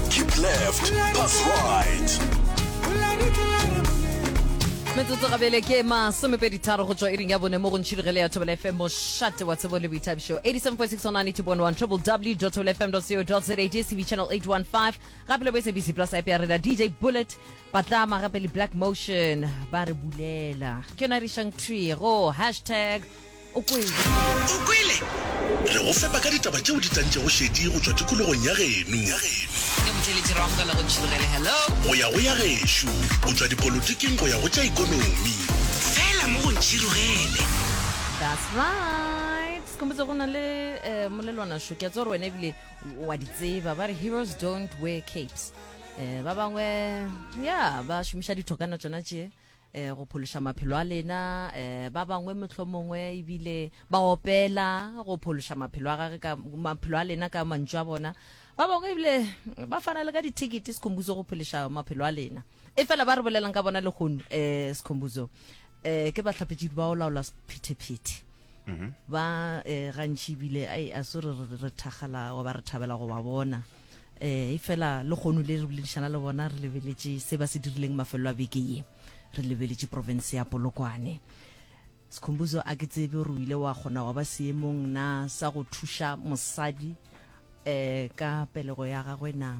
keep left pass right metsotso gabele ke masomepedi tharo go tswa iring ya bone mo go ntšhidugele le ya thobela fm mošate wa tsebo le boithabišo 87.6 triple w tobel fm co za dscb channel 815 gape le bo sabc plus app ya rena dj bullet patlama gape le black motion ba re bulela ke yona re išang tree go hashtag O kwele? O kwele? Re go fepa ka ditaba tšeo di tantšego šedi go tšwa tikologong ya geno. Ke Motšweletši Rong ka la go Tšhilogele. Hello! Go ya go ya gešo, go tšwa dipolotiking go ya go tša ikonomi. Fela mo go Ntšhilogele. That's right. Skombodza go na le eh, molelwana šo. Ke a tseba gore wena ebile wa di tseba. Ba re heroes don't wear capes. Eh, ba bangwe, ya, ba šomiša dithokana tšona tše. eh, go phološa maphelo a lena eh, ba bangwe mohlomongwe ebile ba opela go phološa maphelo a gage ka maphelo a lena ka mantšu a bona ba bangwe ebile ba fana le ka dithekete sekhombuzo go phološa maphelo a lena e fela ba re bolelang ka bona legono um eh, sekhombuzo um ke batlhapetšedi ba o laola sephetephete mm-hmm. ba eh, gantši ebile ai a se re thakgala wa ba re thabela go ba bona um e fela le kgono le re boledišana le bona re lebeletše se ba se dirileng mafelo a beke ye re lebeletše province ya polokwane sekhombuzo a ke tsebe gore o ile wa kgona wa ba seemong na sa go thuša mosadi um ka pelego ya gagwe na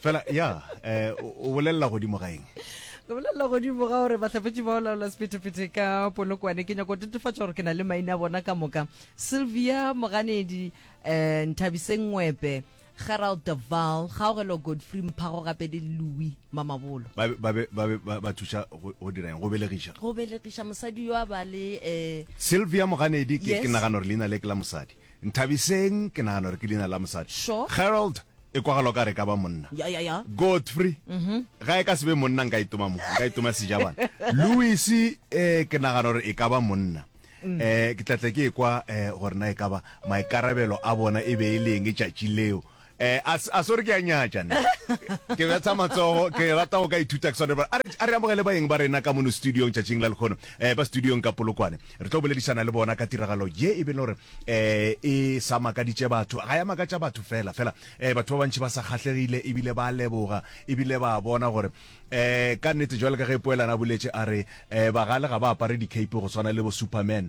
fela ya um o bolelela godimo ga eng ke bolelela godimo ga gore bahlapetši ba olaola sephethephethe ka polokwane ke nyako tetefatša gore ke na le maina a bona ka moka sylvia moganedi um nthabiseng ngwepe gerald deval gaogelo godfrey mphago gape le louis mamabolo ba thuša go dira eng go belegiša go belegiša mosadi yo a ba le um sylvia moganedi ke nagana gore leina le ke la mosadi Nthabiseng, ke nagana gore ke leina la mosadi. Sure. Gerald, e kwagala o ka re e ka ba monna. Ya, ya, ya. Godfrey, ga e ka se be monna nka itoma mo, nka itoma sejabana. Louis, eh, ke nagana gore e ka ba monna. Eh, ke tla tla ke ekwa eh, gore na e ka ba maikarabelo a bona e be e le eng tšatši leo. Eh, a s- a sore ke a nyatša nna. ke betsha matsogo ke rata go ka ithuta ke swane ba- a re a re amogele baeng ba rena ka mono studiong tšatšing la lekgono um ba studiong ka polokwane re tlo boledišana le bona ka tiragalo ye e be le gore um e sa makaditše batho ga ya makatša batho fela fela um batho ba bantšhi ba sa kgahlegile ebile ba leboga ebile ba bona gore um ka nnete jwale ka ge poelana a boletse a re um bagale ga ba apare di-cape go swana le bo superman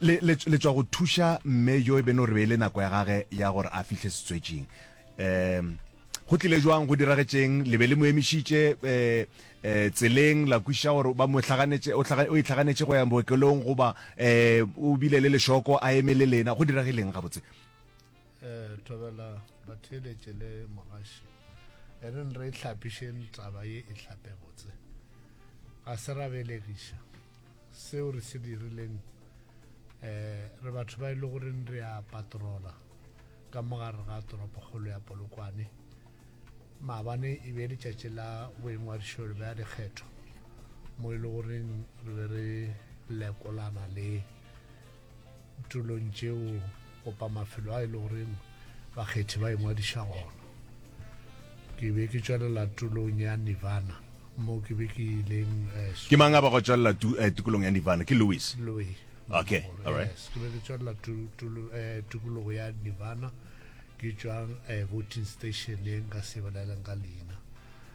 Le, le, le tšwa go thuša mme yo e beno re beile nako ya gage ya gore a fihle setswetšing. Um, go tlile jwang, go diragetšeng, le be le mo emišitše e, e, tseleng, la kwiša gore ba mo hlaganetše, o, hlaga, o itlhaganetše go ya bookelong goba e, o bile le lešoko a eme le lena, go diragileng gabotse? eh thobela batheeletše le mogaši e re re hlapišeng taba ye e hlape botse ga se ra belegiša seo re se dirileng eh re batho ba e le goreng re a patrola ka mogare ga toropokgolo ya polokwane maabane e be letšatši la boingwadišo le bea dikgetho mo e le goreng re be re lekolana le tulong tšeo gopa mafelo a e le goreng bakgethi ba ingwadiša gona ke be ke tšwelela tulong ya nirvana mo ke be ke ileng eh, ke mang a ba go tšwelela eh, tukulong ya nirvana ke louis louis okay all right ke be ke tšwelela eh, tukologo ya nirvana ke tšwang voting station e nka se boleleng ka leina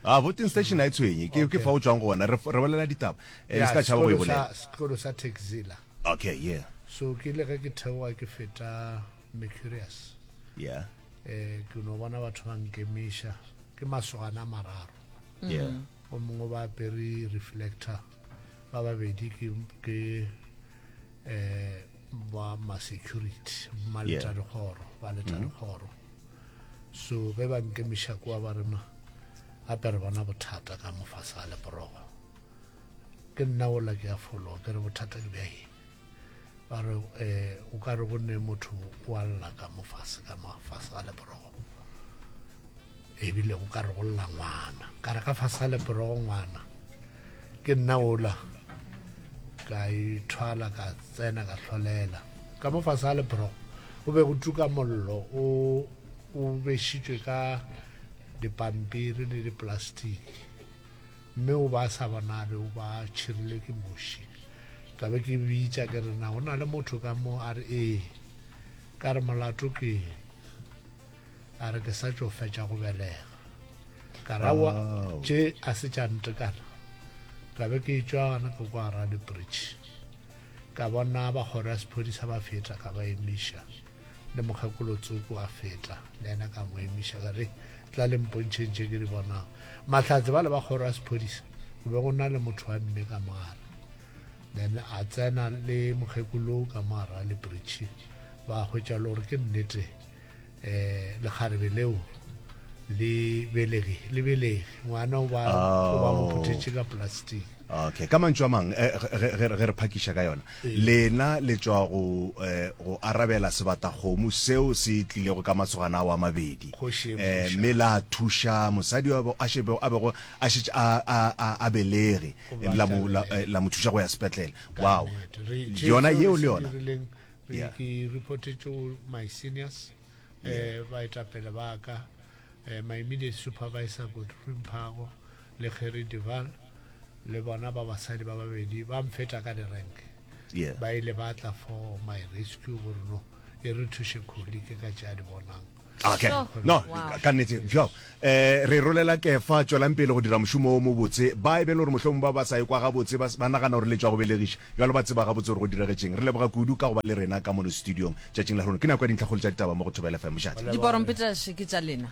a ah, voting station a e tshwenye ke fa o tswang gona re bolela ditaba e se ka tšhaba go e bolela sekolo sa taxila Ok, yeah. So ke ile ge ke theoga ke feta Mercurius. Yeah. Eh ke no bona batho ba nkemiša ke masogana a mararo. Yeah. Mm-hmm. O mongwe ba apere reflector ba babedi ke ke eh ba ma security ma leta dikgoro ba leta mm-hmm. dikgoro. So ge ba nkemiša kwa ba rema apere bona bothata ka mofasa le borogo. ke nna ola ke a fologa ke re bothata ke bja eng ba re um o ka re go ne motho wa lla ka mofase ka mafase a leporogo ebile o ka re go lla ngwana ka re ka fase a leporogo ngwana ke nna ola ka ithwala ka tsena ka tlholela ka mo fase a lebro go be go tuka mollo o o bešitšwe ka dipampiri le dipolastiki Mme o be a sa bonabe, o be a tšhirile ke muši. Ka be ke bitša ke re, Na go na le motho ka mo? A re, Ee. Ka re, Molato ke eng? A re, Ke sa tšo fetša go belega. Ka ra wa tše a se tša ntekana. Ka be ke tšwa gana ke kwa Raleigh Bridge, ka bona ba kgoro ya sephodisa ba feta, ka ba emiša. le mokgekolo tsoko a fetla le ena ka mo emiša ka re tla le mpontšheng tše ke di bonang mahlatse ba le ba kgoro ya sephodisa go be go na le motho wa mme ka mogare then a tsena le mokgekolo ka mogara le bridge ba hwetša le gore ke nnete um lekgarebe leo le belege le belege ngwana o ba mo phuthetše ka plastic Okay. Ka mantšu a mang, ge, ge, ge re phakiša ka yona, lena le tšwa go, eh, go arabela sebatakgomo seo se tlilego ka masogana ao a mabedi, eh, mme la thuša mosadi yo a šebego, a bego a šetše a, a, a, a belege, ebe la mo, la, eh, la mo thuša go ya sepetlele. Wow. Yona yeo le yona. Yeah. Ke reportetše go my seniors, eh, baetapele ba ka, eh, my immediate supervisor, Godfrey Mphago, Le Gerrie Duval le bona ba basadi ba babedi ba mfeta ka direnke. Yeah. Ba ile ba tla for my rescue gore no e re thuše Kholi ke ka tše a di bonang. Okay. Sure. No, Wow. ka- ka nnete. Bjao. Eh, re rolela Kefa, tšwelang pele go dira mošomo o mobotse. Ba e be e le gore mohlomong ba ba sa ekwa gabotse, ba s- ba nagana gore le tšwa go belegiša. Bjalo ba tseba gabotse gore go diragetšeng. Re leboga kudu ka go ba le rena ka mono studiong tšatšing la rona. Ke nako ya dintlhakgolo tša ditaba mo go Thobela FM. Mošate. Diporompetashe ke tša lena.